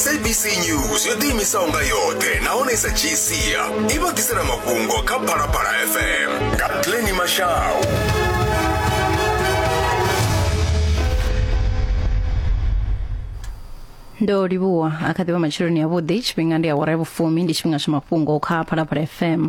sabc news yo ḓiimisaho nga yoṱhe nahone i sa dzhii sia i vha ḓisela mafhungo kha phalaphala fm nga pleni mashau ndo livhuwa a kha ḓivha matsheloni avhuḓi tshifhinga ndi awara ya vhufumi ndi tshifhinga tsha mafhungo kha phalaphala fm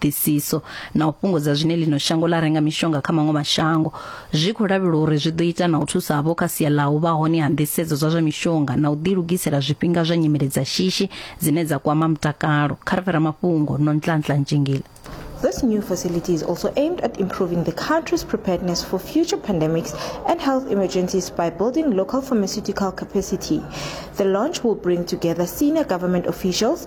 ṱhoḓisiso na u fhungudza zwine ḽino shango ḽa renga mishonga kha maṅwe mashango zwi khou lavhelwa uri zwi ḓo ita na u thusa havho kha sia ḽa u vha hone ha nḓisedzo dza zwa mishonga na u ḓilugisela zwifhinga zwa nyimele dza shishi dzine dza kwama mutakalo kha ri fhira mafhungo nontlantla ntshingila This new facility is also aimed at improving the country's preparedness for future pandemics and health emergencies by building local pharmaceutical capacity. The launch will bring together senior government officials,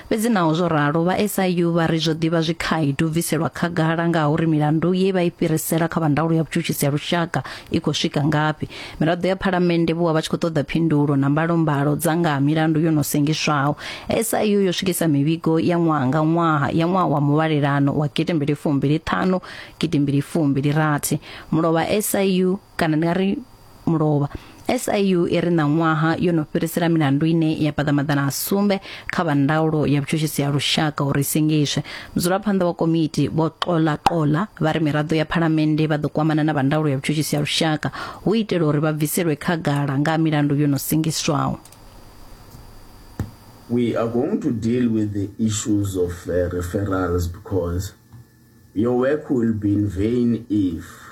Fhedzi naho zwo ralo, vha SIU vha ri zwo ḓi vha zwi khaedu u bviselwa khagala nga ha uri milandu ye vha i fhirisela kha vha ndaulo ya vhutshutshisi ha lushaka i khou swika ngafhi. Miraḓo ya Phalamennde vho vha vha tshi khou ṱoḓa phindulo na mbalombalo dza nga ha milandu yo no sengiswaho. SIU yo swikisa mivhigo ya ṅwaha nga ṅwaha ya ṅwaha wa muvhalelano wa gidi mbili fumbili ṱhanu gidi mbili fumbili rathi. Mulovha SIU kana ndi nga ri mulovha SIU i ri ṋaṅwaha yo no fhirisela milandu ine ya paḓa maḓana a sumbe kha vha ndaulo ya vhutshutshisi ha lushaka uri singiswe mudzulaphanḓa wa komiti vho xola xola vha ri miraḓo ya phalamennde vha ḓo kwamana na vha ndaulo ya vhutshutshisi ha lushaka hu itela uri vha bviselwe khagala nga milandu yo no singiswaho we are going to deal with the issues of uh, referrals because your work will be in vain if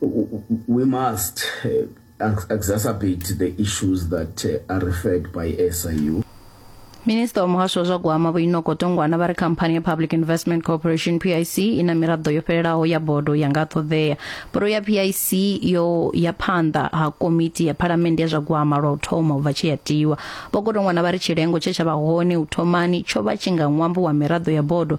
We must uh, exacerbate the issues that uh, are referred by SIU. minista wa muhasho wa zwa gwama vho inoko tongwana vha ri khamphani ya public investment corporation pic i na miraḓo yo fhelelaho ya bodo ya nga ṱoḓea bodo ya pic yo ya phanḓa ha komiti ya phalamennde ya zwa gwama lwa u thoma u bva tshi ya tiwa vho kotongwana vha ri tshilengo tshe tsha vha hone u thomani tsho vha tshi nga ṅwambo wa miraḓo ya bodo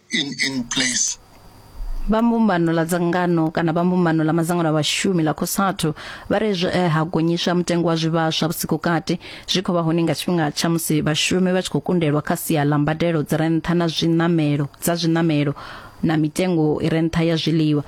in in place. vha mbumbano ḽa dzangano kana vha mbumbano ḽa madzangano a vhashumi ḽa cosatu vha re zwe eh, ha gonyiswa mutengo wa zwivhaswa vhusiku kati zwi khou vha hone nga tshifhinga tsha musi vhashumi vha tshi khou kundelwa kha sia ḽa mbadelo dzi re nṱha na zwiṋamelo dza zwiṋamelo na mitengo i re nṱha ya zwiḽiwa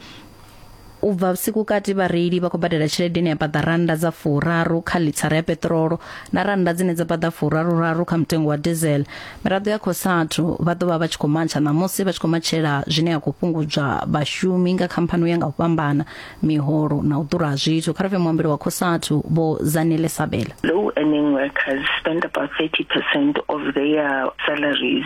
u bva vhusiku kati vhareili vha khou badela tshelede ine ya paḓa rannda dza furaru kha lithara ya peṱirolo na rannda dzine dza paḓa furaruraru kha mutengo wa diesel miraḓo ya khosathu vha ḓo vha vha tshi khou matsha ṋamusi vha tshi khou matshela zwine ya khou fhungudzwa vhashumi nga khamphani ya nga u fhambana miholo na u ḓura ha zwithu kha rafhe muambeli wa khosathu vho zanele sabela low earning workers spend about 30% of their salaries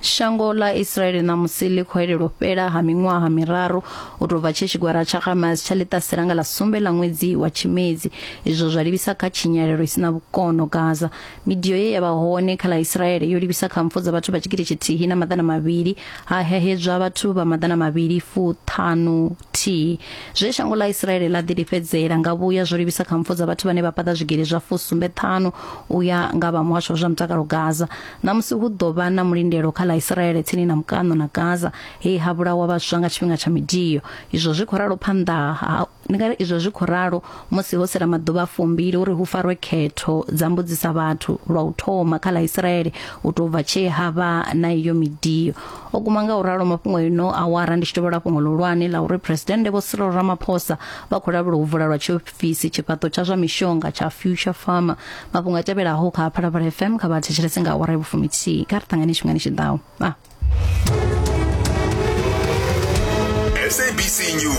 Shango ḽa Israeli ṋamusi ḽi khou elelwa u fhela ha miṅwaha miraru u tou bva tshe tshigwara tsha Hamas tsha ḽiṱasela nga ḽa sumbe ḽa ṅwedzi wa Tshimedzi izwo zwa livhisa kha tshinyalelo i si na vhukono Gaza. Midio ye ya vha hone kha ḽa Israeli yo livhisa kha mpfu dza vhathu vha tshigidi tshithihi na maḓana mavhili ha hehedzwa vhathu vha maḓana mavhili fuṱhanu thihi Zwe shango ḽa Isiraele ḽa ḓilifhedzela nga vhuya zwo livhisa kha mpfu dza vhathu vhane vha paḓa zwigili zwa fusumbe ṱhanu u ya nga vha muhasho wa zwa mutakalo Gaza. Ṋamusi hu ḓo vha na mulindelo kha ḽa Isiraele tsini na mukaṋo na Gaza he ha vhulawa vhaswa nga tshifhinga tsha midio. Izwo zwi khou ralo phanḓa ha ndi nga ri izwo zwi khou ralo musi ho sela maḓuvha a fumbili uri hu farwe khetho dza mbudzisa vhathu lwa u thoma kha ḽa Isiraele u tou bva tshee ha vha na iyo midio. o guma nga u ralo mafhungo ino awara ndi tshi tovhola fhungo ḽihulwane ḽa uri phuresidennde vho Cyril Ramaphosa vha khou lavhelwa u vula lwa tshiofisi tshifhaṱo tsha zwa mishonga tsha Future Pharma mafhungo a tevhelaho kha Phalaphala FM kha vha thetshelese nga awara ya vhufumithihi kha ri ṱangane tshifhingani tshi ḓaho ah. SABC News